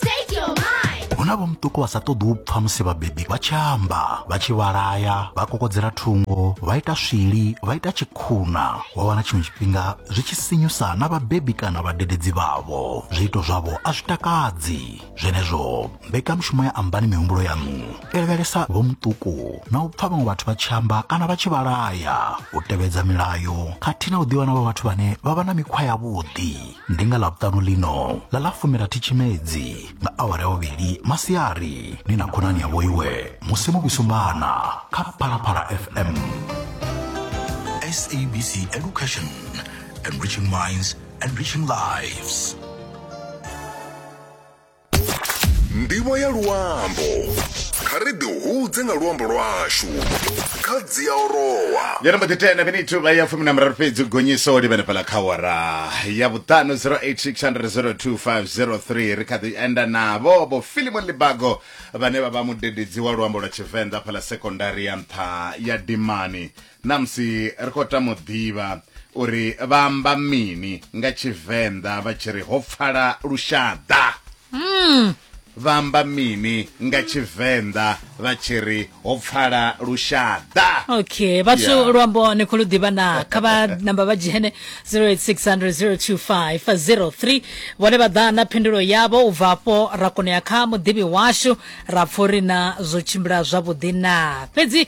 Take your mind. hu na vho muṱuku vha sa ṱoḓi u pfa musi vhabebi vha tshi amba vha tshi vhalaya vha kokodzela thungo vha ita swili vha ita tshikhuna wa wana tshiṅwe tshifhinga zwi tshi sinyusa na vhabebi kana vhadededzi vhavho zwiito zwavho a zwi takadzi zwenezwo mbekanyamushumo ya ambani mihumbulo yaṋu i lavhelesa vho muṱuku na u pfa vhaṅwe vhathu vha tshi amba kana vha tshi vhalaya u tevhedza milayo khathihi na u ḓivha na vha vhathu vhane vha vha na mikhwa yavhuḓi ndi nga ḽavhutanu ḽino ḽa ḽa fumirathi tshimedzi nga awara ya vhuvhili masiari ni na khonani yavho iwe musi no vhusumbana kha phalaphala fm sabc education enriching minds enriching lives ndivho ya luambo kha ri ḓi hudze nga luambo lwashu kha dzi a orowa yona mbo ḓi tena minithu vha ya fumi na miraru fhedzi gonyiso li vhenefhala kha wara ya vhuṱanu 0860025003 ri kha ḓi enda navho vho filimon libago vhane vha vha mudededzi wa luambo lwa tshivenḓa fhala sekondari ya nṱha ya dimani Na musi ri khou tama u ḓivha uri vha amba mini nga Tshivenḓa vha tshi ri ho pfala lushaḓa. Vha amba mini nga Tshivenḓa vha tshi ri ho pfala lushaḓa. okay vhathu Yeah. luambo ni khou lu ḓivha na kha vha namba vha dzhene 0860025003 vhone vha ḓa na phindulo yavho u bva afho ra kona u ya kha muḓivhi washu ra pfa uri na zwo tshimbila zwavhuḓi na fhedzi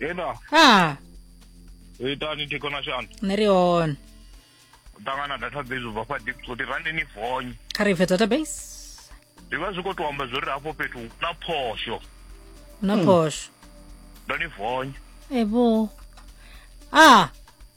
Enda, ha ita ni thikona shani. nṋe ri hone Tangana data base ubva kwa deep kuti randi ni fonye. kha ri bve database Zwi vha zwi khou tou amba zwori hafho fhethu hu na phosho. hu na phosho Ndo ni fonye. ebo a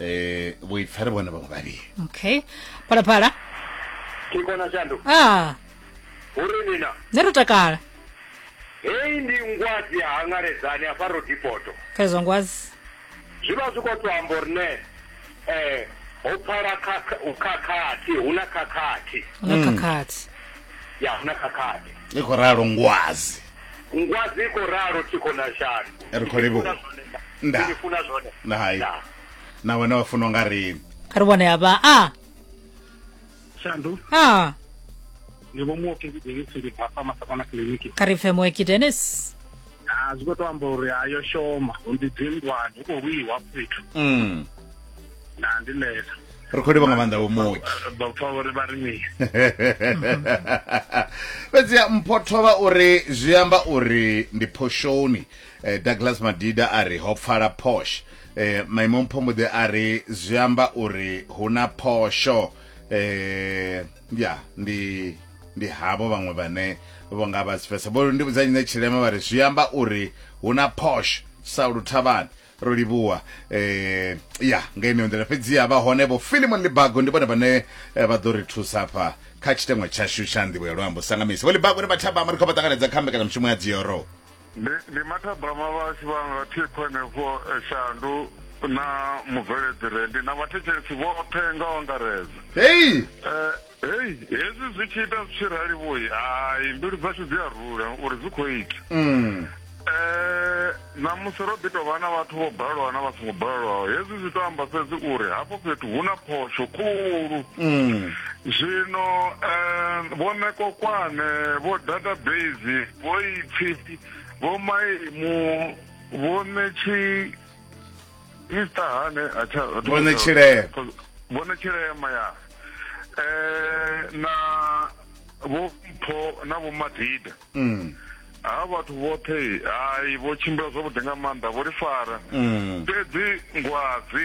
eh vhuipfa ri vhone vhaṅwe vhavhili okay phalaphala ke kona shandu ah uri nina ne ro takala hei ndi ngwadzi ya hangaledzani afha ro dipoto pfezwa ngwazi zwi vha zwi khou to amba uri ne um ho pfala khakha- u khakhathi hu na khakhathi na khakhathi ya hu na khakhathi i khou ralo ngwazi ngwadzi i khou ralo thikho na shanu ri khou livhuwa nda ndi funa zwone na hai na wena wa funa nga ri kha ri vhone hafha a shandu a ndi vho muoki denisi ndi papa masakona kiliniki kha ri pfe muoki denis a zwi khou to amba uri ayo shoma ndi dzingwani u khou lwiwa fhethu mm. na ndi lesa ri khou livha nga maanḓa vho muki vha pfa uri vha ri mini fhedziha mpho thovha uri zwi amba uri ndi phoshoni eh, douglas madida a ri ho pfala posh eh, maimo mpho mbo ḓi a ri zwi amba uri hu na phosho eh, ya ndi ndi havho vhaṅwe vhane vho nga vha sifesa vho ndi vhudza nyine tshilema vha ri zwi amba uri hu na posh sa luthavhani ro livhuwa eh ya nga ine nḓila fhedzi ya vha hone vho Philemon Libago ndi vhone vhane eh, vha ḓo ri thusa hafha kha tshiteṅwa tshashu tsha nḓivho ya luambo sangamisi vho Libago ni vhathabama ri khou vha ṱanganedza kha mbekanyamushumo ya dzioro ndi ndi mathabama vhashu vha nga thikho henefho eh, shandu na mubveledzi rendi na vhathetshelesi vhoṱhe nga u angaredza hei Eh, hei hezwi zwi tshi ita zwi tshi rali vhoi hai mbilu dzashu dzi a rula uri zwi khou ita um ṋamusi ro ḓi tou vha na vhathu vho balelwa na vha songo balelwaho hezwi zwi tou amba fhedzi uri hafho fhethu hu na phosho khulu mm. zwino um vho nekokwane vho database vho ipfi vho maimu vho netshi Mister Hane acha Bona Chileya Bona Chileya maya eh na vho mpho na vho madida mm ha vhathu vhoṱhe hayi vho tshimbila zwavhuḓi nga maanḓa vho ri fara mm. fhedzi ngwadzi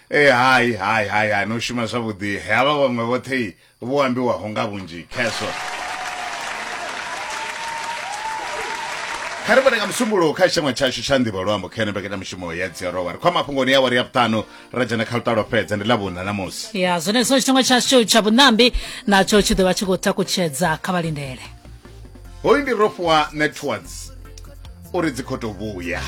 e hai hai hai hai no shuma zwavhuḓi havha vhaṅwe vhoṱhe vho ambiwaho nga vhunzhi kheswo kha ri vhone nga musumbulo kha tshiṅwe tshashu tsha nḓivho luambo kha ene mbekanyamushumo ya dziarova ri khwa mafhungoni ya wari ya vhuṱanu ra dzhena kha lutalo fhedza ndi ḽa vhuna namusi ya zwenezwo tshiṅwe tshashu tsha vhuṋambi natsho tshi ḓo vha tshi khou takutshedza kha vhalindele hoyu ndi rofhiwa networks uri dzi khou tou vhuya